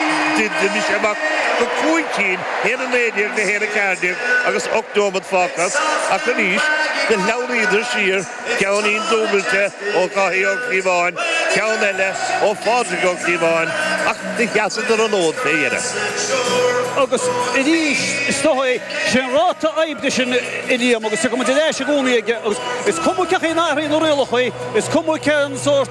D'imigh sé amach go cúig cinn, haon a naoi déag, na haon a ceathair déag agus ocht neomat fágtha acu arís, do shleamhnaíodar siar, cúilín dúbailte ó Dháithí Ó Clúmháin, ceann eile ó Phádraig Ó Clúmháin, ach do sheasadar an fód fé dheireadh. Agus arís, is dócha é, sé an ráta oibre sin a Liam, agus tiocfaidh muid ar ais i gcónaí aige, agus is cuma cén chaoi a n-athraíonn na rialacha, is cuma cén sórt,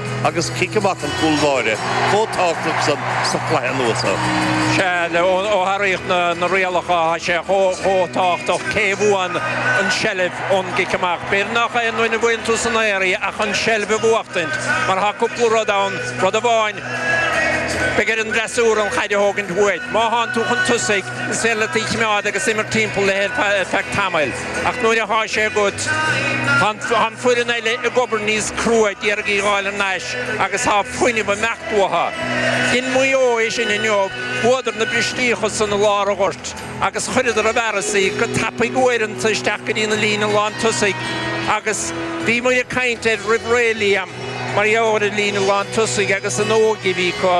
agus cic amach an chúl báire chomh tábhachtach san sa chluiche anuas air. Sea, ó hathraíodh na rialacha, tá sé chomh tábhachtach cé a bhuann an tseilbh ón gcic amach. B'fhéidir nach aon duine a bhuann tú san aer í ach an tseilbh a bhuachtaint, mar tá cúpla rud ann, rud amháin, beidh ar an bhfreasúra an chaid a thógaint uait. Má thánn tú chun tosaigh, is féidir leat í choimeád agus imirt timpeall léi ar feadh tamaill. Ach nuair atá sé agat, tá an foireann eile ag obair níos crua d'iarraidh í dh'fháil thar n-ais agus tá fuinneamh ag imeacht uathu. Dhein Maigh Eo é sin inniu, bhuadar na bristíocha san i lár an ghoirt agus chuireadar i bhfearas í go tapaidh uaireanta isteach go dtí na líne lántosaigh agus bhíomar ag caint air roimh ré, Liam, mar gheall ar an líne lántosaigh agus an óige a bhí acu,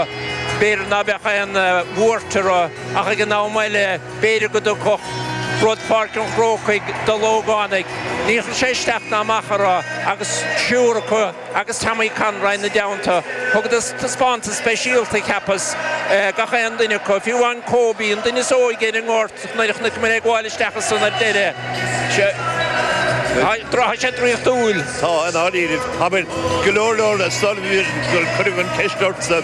b'fhéidir ná beadh aon bhuairt orthu ach ag an am eile, B'fhéidir go dtiocfadh rud Pháirc an Chrócaigh do na hógánaigh. Níor chuir sé isteach ná amach orthu agus triúr acu agus Tommy Conroy ina dteannta. Thugadar taispeántas speisialta, cheapas, gach aon duine acu, fiú amháin Kobe, an duine is óige ar an ngort, nuair a chonaic muid é ag gabháil isteach ansan ar deireadh. Tá sé draíochtúil. Tá, i ndáiríre. Abair go leor leor sular cuireadh an cheist ortsa.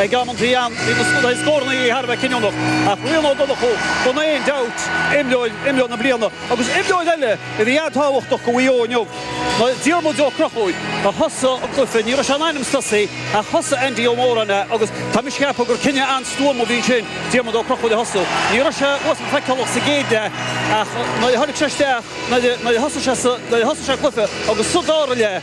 Ag amantaí ann, bhí a chuid scórannaí thar a bheith cinniúnach, ach Rian Ó Donnchú, gan aon dabht, imreoir, imreoir na bliana, agus imreoir eile a bhí an-tábhachtach do Mhaigh Eo inniu, ná Diarmuid Ó Conchúir, a thosaigh an cluiche. Ní raibh sé in ainm is tosú, ach thosaigh Andy Ó Móráin é, agus tá mise ag ceapadh gur cinneadh an-stuama a bhí ansin, Diarmuid Ó Conchúir a thosú. Ní raibh sé uafásach feiceálach sa gcéad leath, ach nuair a tháinig sé isteach, nuair a thosaigh sé sa, nuair a thosaigh sé an cluiche, agus sa dara leath,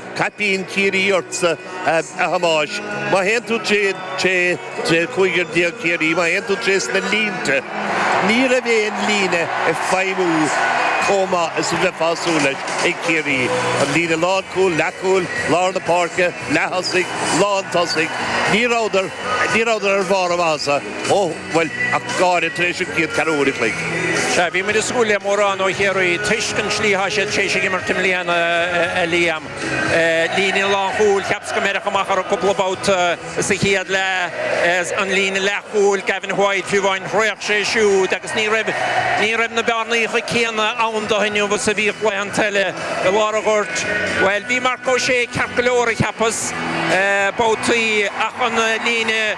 Caipín Chiarraí ortsa, a Thomáis. Má théann tú tré chúigear déag Chiarraí, má théann tú tré sna línte, ní raibh aon líne ag feidhmiú chomh maith is a bheifeá ag súil leis ag Ciarraí. An líne lánchúil, leathchúil, lár na páirce, leath-thosaigh, lántosaigh, ní rabhadar ar bharr a maitheasa. Ó, bhuel, ach go háirithe tar éis an chéad ceathrú uair an chloig. Sea, bhí muid ag súil le mórán ó Chiarraí toisc an tslí atá siad tar éis ag imirt i mbliana, a Liam. Líne lánchúil, cheapas gur beireadh amach orthu cúpla babhta sa chéad leath. An líne leathchúil, Gavin White, fiú amháin, thraoch sé siúd agus ní raibh ní raibh na bearnaíocha céanna ann dó inniu is a bhíodh laethanta eile. I lár an ghoirt, bhuel, bhí Marc Ó Sé ceart go leor, a cheapas, babhtaí ach an líne.